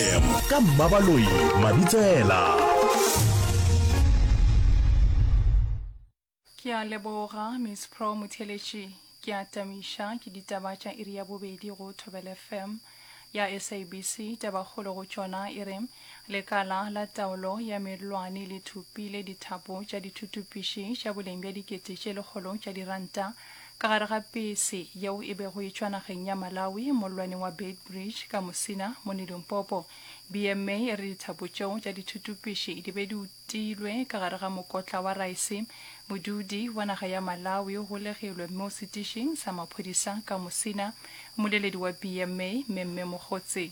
FM ka Mmabaloi Mabitsela. Ke a leboga Miss Pro Motheletši. Ke a tamiša ke ditaba tša iri ya bobedi go Thobel FM ya SABC. Tabakgolo go tšona e re lekala la taolo ya mellwane le thopile dithapo tša dithutupiši tša boleng bja dikete tše lekgolo tša diranta Ka gare ga pese yeo e bego e tšwa nageng ya Malawi, mollwaneng wa Beitbridge, ka Musina, mo ne Limpopo, BMA e re dithapo tšeo tša dithutupši di be di utilwe ka gare ga mokotla wa raese. Modudi wa naga ya Malawi o golegilwe mo setišing sa maphodisa ka Musina. Mmoleledi wa BMA, Memme Mogotsi.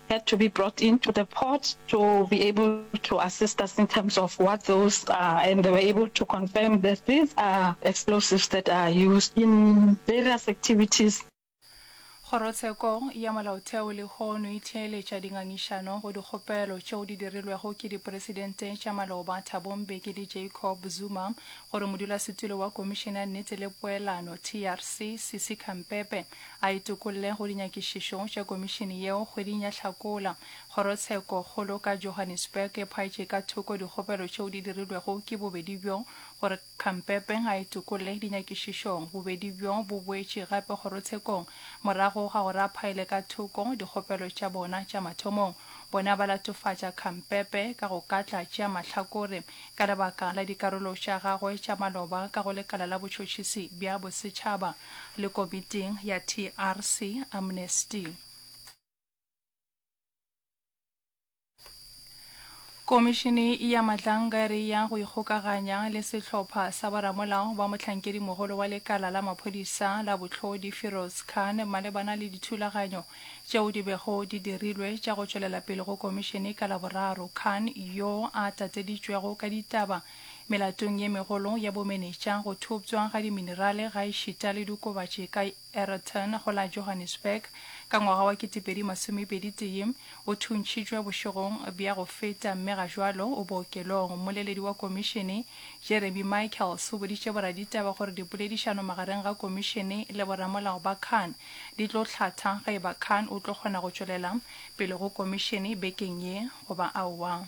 had to be brought in to the court to be able to assist us in terms of what those are and they were able to confirm that these are explosives that are used in various activities. Kgorotsheko ya Molaotheo lehono e theeletša dingangišano go dikgopelo tšeo di dirilwego ke dipresidente tša maloba Thabo Mbeki le Jacob Zuma gore modulasetulo wa Komišene ya Nnete le Poelano, TRC, Sisi Khampepe, a e tokolle go dinyakišišo tša komišene yeo kgweding ya Hlakola. Kgorotsheko kgolo ka Johannesburg e phaetše ka thoko dikgopelo tšeo di dirilwego ke bobedi bjo gore Khampepe a e tokolle dinyakišišong. Bobedi bjo bo boetše gape kgorotshekong morago ga gore a phaele ka thoko dikgopelo tša bona tša mathomong. Bona ba latofatša Khampepe ka go katla tšea mahlakore ka lebaka la dikarolo tša gagwe tša maloba ka go lekala la botšhotšhisi bja bosetšhaba. le komiting ya TRC Amnesty. Komišene ya Madlangari ya go ikgokaganya le sehlopha sa boramolao ba mohlankedimogolo wa lekala la maphodisa la bohlodi Firoz Khan malebana le dithulaganyo tšeo di bego di dirilwe tša go tšwelela pele go komišene ka Laboraro. Khan, yo a tateditšwego ka ditaba Melatong ye megolo ya bomenetša, go thoptšwa ga diminerale gaešita le diokobatši ka Ayrton go la Johannesburg ka ngwaga wa 2021, o thuntšhitšwe bošegong bja go feta mme ga jwalo o bookelong. Mmoleledi wa Komišene, Jeremy Michaels, o boditše boraditaba gore dipoledišano magareng ga Komišene le boramolao ba Khan di tlo hlatha ge e ba Khan o tlo kgona go tšwelela pele go Komišene bekeng ye goba aowa.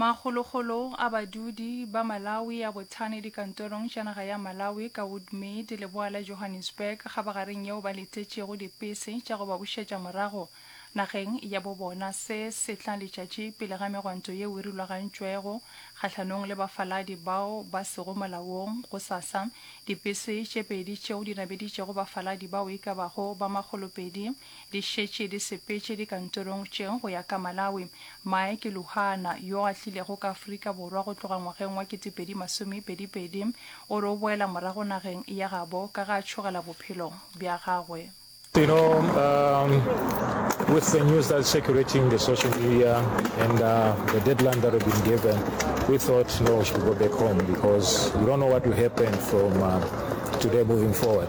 Makgolokgolo a badudi ba Malawi a bothane dikantorong tša naga ya Malawi ka Woodmead, leboa la Johannesburg, kgabagareng yeo ba letetšego dipese tša go ba bušetša morago nageng ya bo bona se sehla letšatši pele ga megwanto yeo e rulagantšwego kgahlanong le bafaladi bao ba sego molaong. Gosasa, dipese tše pedi tšeo di nabeditšego bafaladi bao e ka bago ba makgolopedi Di šetše di sepetše dikantorong tše go ya ka Malawi. Mike Luhana, yo a tlilego ka Afrika Borwa go tloga ngwageng wa 2022, o re o boela morago nageng ya gabo ka ge a tšhogela bophelo bja gagwe. You know, um, with the news that's circulating the social media and uh, the deadline that we've been given, we thought, no, we should go back home because we don't know what will happen from uh, today moving forward.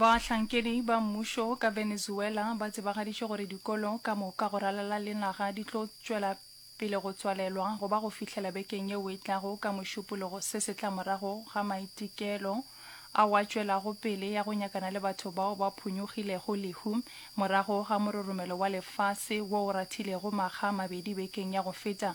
Bahlankedi ba mmušo ka Venezuela ba tsebagaditše gore dikolo ka moka go ralala le naga di tlo tšwela pele go tswalelwa go ba go fihlela bekeng yeo e tlago ka Mošupologo se se tla morago ga maitekelo ao a tšwelago pele ya go nyakana le batho bao ba phunyogilego lehu morago ga mororomelo wa lefase wo o rathilego makga a mabedi bekeng ya go feta.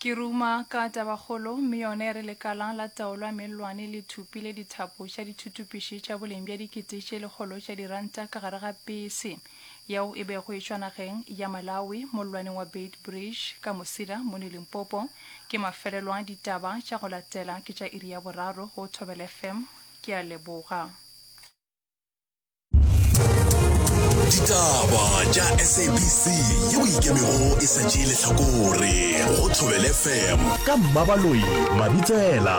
Ke ruma ka tabakgolo, mme yona e re lekala la taolo ya mellwane le thupi le dithapo tša dithutupiši tša boleng bja dikete tše lekgolo tša diranta ka gare ga pese yeo e bego e tšwa nageng ya Malawi mollwaneng wa Beitbridge ka Musila mone Limpopo. Ke mafelelo a ditaba tša go latela ke tša iri ya boraro go Thobela FM. Ke a leboga. ditaba tša sabc ye o ikemego e sa tšee lehlakore go thobele fm ka mmabaloyi mabitsela